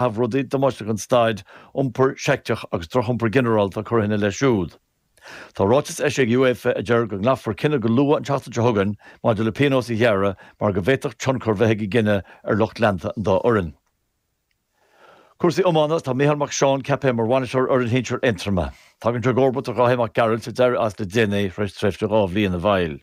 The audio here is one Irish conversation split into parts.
Tá rudaí damáiste ag an staid, iompar seicteach agus drochiompar ginearálta curtha ina leith siúd. Tá ráiteas eisithe ag UEFA a deir go nglacfar cinneadh go luath an tseachtain seo chugainn maidir le pionós a ghearradh mar go bhféadfadh tionchar bheith ag an gcinneadh ar lucht leanta an dá fhoireann. Cúrsaí Iomána Tá Micheál Mac Seáin ceaptha mar bhainisteoir fhoireann shinsir Aontroma. Tagann sé i gcomharbacht ar Dháithí Mac Gearailt a d'éirigh as le déanaí tar éis tréimhse dhá bhliain ina bhfeighil.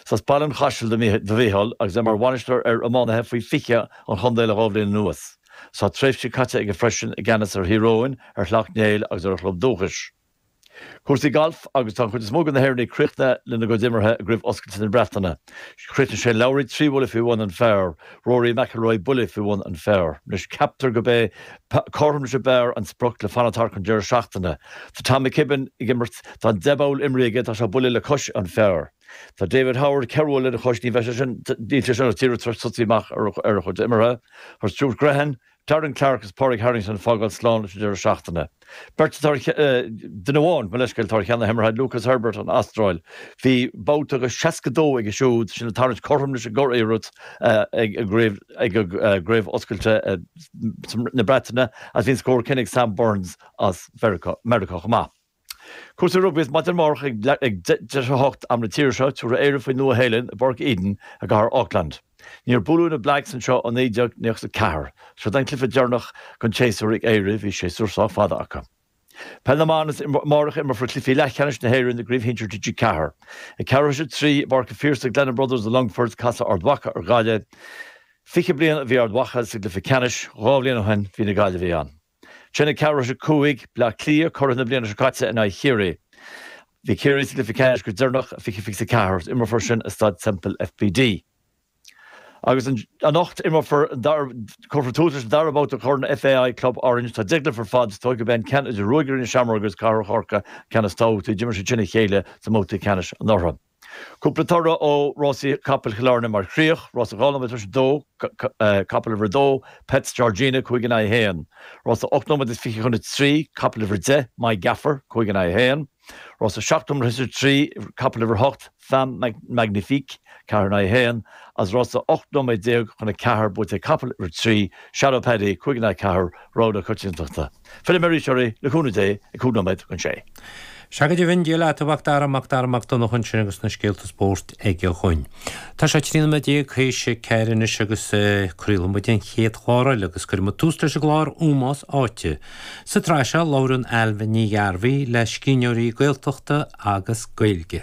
Is as Baile an Chaisil do Mhicheál agus é mar bhainisteoir ar iománaithe faoi 20 an chontae le dhá bhliain anuas. Tá tréimhse caite aige freisin i gceannas ar Thír Eoghain, ar Shleacht Néill agus ar a chlub dúchais. Cúrsaí Gailf Agus tá an chuid is mó de na hÉireannaigh críochnaithe lena gcuid imeartha i gCraobh Oscailte na Breataine, chríochnaigh Shane Lowry trí bhuille faoi bhun an phar, Rory McIlroy buille faoi bhun an phar. Anois ceaptar go b'é cothrom sa bpar an sprioc le fanacht thart don deireadh seachtaine. Tá Tom McKibbin ag imirt, tá an deich bpoll imrithe aige, tá sé buille le cois an phar. Tá David Howard ceithre bhuille lena chois, níl sé sin ach tar éis tosaí amach ar a chuid imeartha. Tá Stuart Grehan Darren Clarke agus Pádraig Harrington ag fágáil slán leis an deireadh seachtaine. Beirt atá ar, duine amháin, mo leithscéal, atá ar cheann na himeartha, Lucas Herbert, an Astráil. Bhí babhta de 62 aige siúd sin ag tarraingt cothrom leis an gcuriarracht ag an gCraobh Oscailte na Breataine agus bhí an scór céanna ag Sam Burns as Meiriceá chomh maith. Cúrsaí rugbaí is maidin amárach ag deich tar éis a hocht, am na tíre seo, tabharfaidh Éirinn faoin Nua Shéalainn i bPáirc Eden i gcathair Auckland. Níor buaileadh na Blacks anseo ó 1994. Seod é an cluiche deireanach den tséasúr ag Éire, bhí séasúr sách fada acu. Peil na mban is amárach a imreofar cluichí leathcheannais na hÉireann i gCraobh Shinsir TG4. Ag ceathrú tar éis a trí i bPáirc an Phiarsaigh, Glennon Brothers i Longfort, casfaidh Ard Mhacha ar Ghaillimh. Fiche bliain ó bhí Ard Mhacha sa gcluiche ceannais, dhá bhliain ó shin bhí na Gaillimhigh ann. Ansin ag ceathrú tar éis a cúig, Bleá Cliath, curaidh na bliana seo caite, in aghaidh Chiarraí. Bhí Ciarraí sa gcluiche ceannais go deireanach i 2024 agus imreofar sin i Staid Semple FBD. Agus anocht imreofar an dara, cuirfear tús leis an dara babhta de Chorn FAI Club Orange. Tá deich gcluiche ar fad is dóigh gurb é an ceann idir Ruagairí na Seamróige agus Cathair Chorcaí an ceann is tábhachtaí. D'imir siad sin a chéile sa mbabhta ceannais anuraidh. Cúpla toradh ó rásaí capaill Chill Airne mar chríoch, Rása Dhá Nóiméad tar éis a Dó, Capall Uimhir 2, Pets Georgina, 5 in aghaidh 1, Rása Ocht Nóiméad is Fiche chun a Trí, Capall Uimhir 10, My Gaffer, 5 in aghaidh 1, Rása Seacht Nóiméad tar éis a Trí, Capall Uimhir 8, Femme Magnifique, 4 in aghaidh 1, Is Rása Ocht Nóiméad Déag chun a Ceathair buaite ag Capall Uimhir 3, Shadow Paddy, 5 in aghaidh 4, Rogha na Coitiantachta. Fillfidh mé arís oraibh, le cúnamh Dé, ag cúig nóiméad chun a sé. Sea, go deimhin, Dia leat, a Mhacdara, Macdara Mac Donncha ansin agus na scéalta spóirt aige dhuinn. Tá sé trí nóiméad déag tar éis a ceathair anois agus craolfaidh muid an chéad chlár eile agus cuirfidh muid tús leis an gclár Ómós Áite. Sa tsraith seo, labhrann Ailbhe Ní Ghearbhuigh le scríbhneoirí Gaeltachta agus Gaeilge.